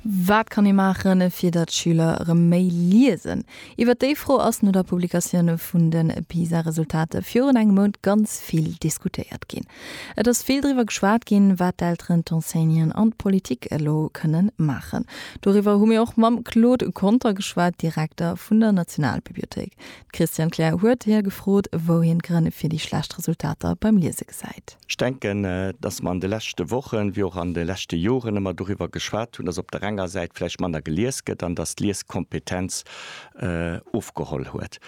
Wat kann ee maachen, fir datt d'Schüler erëm méi liesen? Iwwert déi Fro ass no der Publikatioun vun de PISA-Resultater virun engem Mount ganz vill diskutéiert ginn. Et ass vill driwwer geschwat ginn, wat d'Elteren, d'Enseignanten an d'Politik elo kënnen maachen. Doriwwer hu mir och mam Claude Conter geschwat, Direkter vun der Nationalbibliothéik. D'Christiane Kleer huet hie gefrot, wou hien d'Grënn fir déi schlecht Resultater beim Liese gesäit. Ech denken, dass mer an de leschte Wochen, wéi och an de leschte Joren ëmmer doriwwer geschwat hunn, dass op der enger Säit vläicht manner gelies gëtt an dass d'Lieskompetenz ofgeholl huet.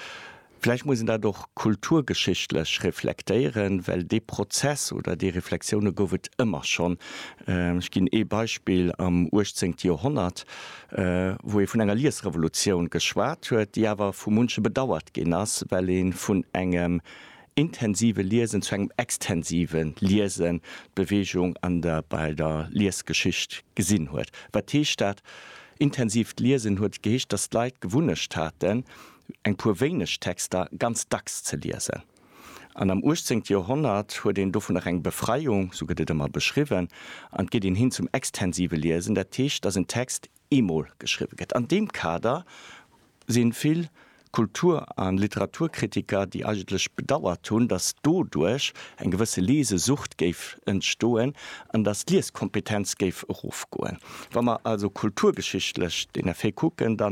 Vläicht muss een dat och kulturgeschichtlech reflektéieren, well dee Prozess oder déi Reflexioune gouf et ëmmer schonn. Ech ginn ee Beispill, Am uechtzéngte Joerhonnert, wou ee vun enger Liesrevolutioun geschwat huet, déi awer vu munche bedauert ginn ass, well ee vun engem intensive Liesen zu engem extensive Liesen d'Beweegung an der bei der Liesgeschicht gesinn huet. Wat heescht dat? Intensiivt Liesen huet geheescht, datt d'Leit d'Gewunnecht haten, eng puer wéineg Texter ganz dacks ze liesen. An am uechtzéngte Joerhonnert huet een dovun nach eng Befreiung, esou gëtt et ëmmer beschriwwen, an et geet een hin zum extensive Liesen, dat heescht, datt en Text eemol geschriwwe gëtt. An deem Kader si vill Kultur a Literaturkritiker, déi eigentlech bedauert hunn, datt doduerch eng gewësse Lesesucht géif entstoen an datt d'Lieskompetenz géif erofgoen. Wa mer also kulturgeschichtlech den Effet kucken, da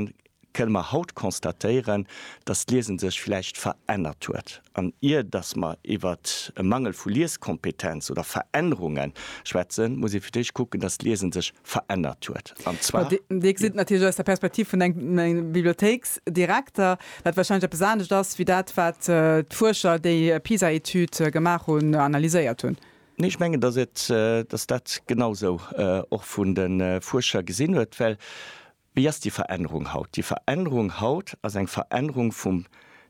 kënne mer haut constatéieren, dass d'Liesen sech vläicht verännert huet. An ier dass mer iwwert e Mangel vu Lieskompetenz oder Verännerunge schwätzen, muss ee fir d'éischt kucken, dass d'Liesen sech verännert huet. An zwar. Dir gesitt natierlech aus der Perspektiv vun engem Bibliothéiksdirekter, dat warscheinlech eppes anescht ass wéi dat, wat d'Fuerscher, déi d'PISA-Etüd gemaach hunn, analyséiert hunn. Nee, ech mengen, dass dat genau esou och vun de Fuerscher gesinn huet, well Wéi ass déi Verännerung haut? Déi Verännerung haut ass eng Verännerung vum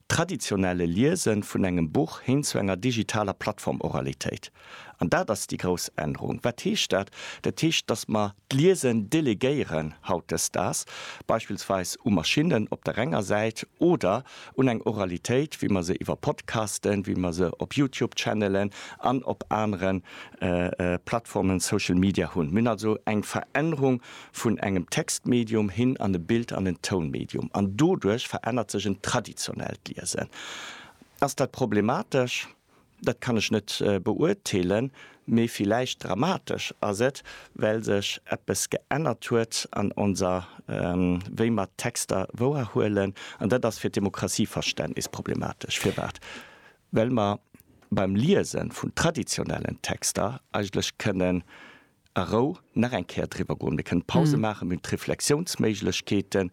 traditionelle Liese vun engem Buch hin zu enger digitaler Plattform-Oralitéit. An dat ass déi grouss Ännerung. Wat heescht dat? Dat heescht, dass mer d'Liesen delegéieren hautdesdaags, beispillsweis u Maschinnen op der enger Säit oder un eng Oralitéit, wéi mer se iwwer Podcasten, wéi mer se op YouTube-Channelen an op anere Plattformen, Social Media hunn. Mir hunn also eng Verännerung vun engem Textmedium hin an e Bild an en Tounmedium, an doduerch verännert sech en traditionellt Liesen. Ass dat problematesch? Dat kann ech net beurteelen, mee villäicht dramatesch ass et, well sech eppes geännert huet an onser wéi mer d'Texter wouerhuelen, an dat ass fir d'Demokratie-Verständnis problematesch. Firwat? Well mer beim Liese vun traditionellen Texter eigentlech kënnen a Rou nach eng Kéier driwwer goen. Mir kënnen Pause maachen, mir hunn d'Reflexiounsméiglechkeeten,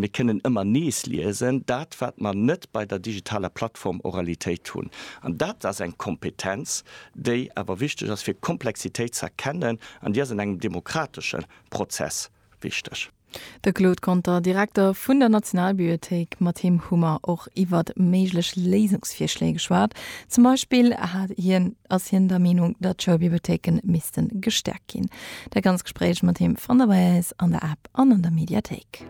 mir kënnen ëmmer nees liesen, dat wat mer net bei der digitaler Plattform Oralitéit hunn. An dat ass eng Kompetenz, déi awer wichteg ass fir Komplexitéit ze erkennen an déi ass an engem demokratesche Prozess wichteg. De Claude Conter, Direkter vun der Nationalbiiothéik, mat him hu mer och iwwer méiglech Léisungsvirschléi geschwat. Zum Beispill hat hien, ass hien der Meenung, datt Schoulbibliothéike misste gestäerkt ginn. Dat ganz Gespréich mat him fannt der bei äis an der App an an der Mediathéik.